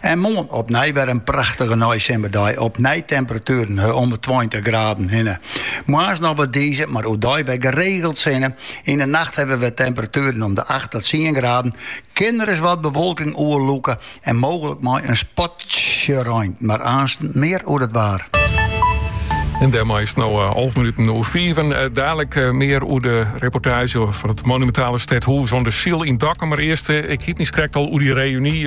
En moarn opnij wer in prachtige neisimmerdei, opnij temperatueren om 'e tweintich graden hinne. Moarns noch wat dize, mar oerdei wer geregeld sinne. Yn 'e nacht hawwe we temperatueren om de acht ta tsien graden. Kin ris wat bewolking oerlûke en mooglik mei in spatsje rein, mar aansten mear oer it waar. En dêrmei is it no alve minuten oer fiven. Dadelijk mear oer de reportaazje fan it monumentale stedhûs oan de Syl yn Dokkum. Mar earst, ik hie it nijs krekt al oer dy reuny.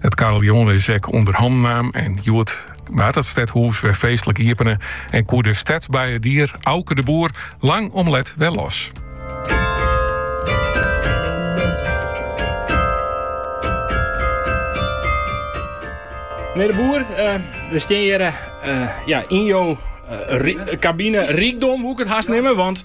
It karreljon is ek ûnder hannen naam en hjoed waard it stedhûs wer feestlik iepene en koe de stedsbeiedier Auke de Boer lang om let wer los. Menear De Boer, eh, we steane hjir eh, eh, ja, yn jo kabine, rykdom woe ik it hast neame. Want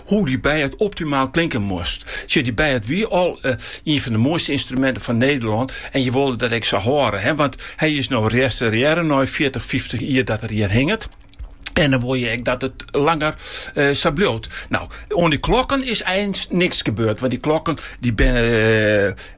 Hoe dy beiaard optimaal klinken moast. Sjoch, dy beiaard wie al ien fan de moaiste ynstruminten fan Nederlân en je wolle dat ek sa hâlde. Want hy is no restaurearre nei fjirtich, fyftich jier dat er hjir hinget. En dan wol je ek dat het langer eh, sa bliuwt. Nou, oan die klokken is eins niks gebeurd. Want die klokken die binnen eh,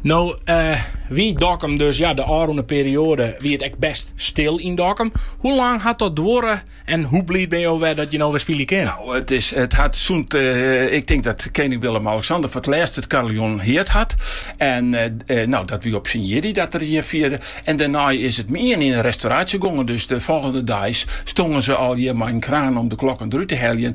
No wie Dokkum dus ja, de ôfrûne perioade wie it ek best stil yn Dokkum. Hoe lang hat dat duorre en hoe bliid bin jo wer dat je no wer spylje kinne? Nou, it, is, it hat sûnt, eh, ik tink dat kening Willem-Alexander foar it lêst it kariljon heard hat. En eh, eh, nou, dat wie op syn jierdei dat er hjir fierde. En dêrnei is it mei-ien yn 'e restauraasje gongen. Dus de folgjende deis stongen se al hjir mei in kraan om de klokken derút te heljen.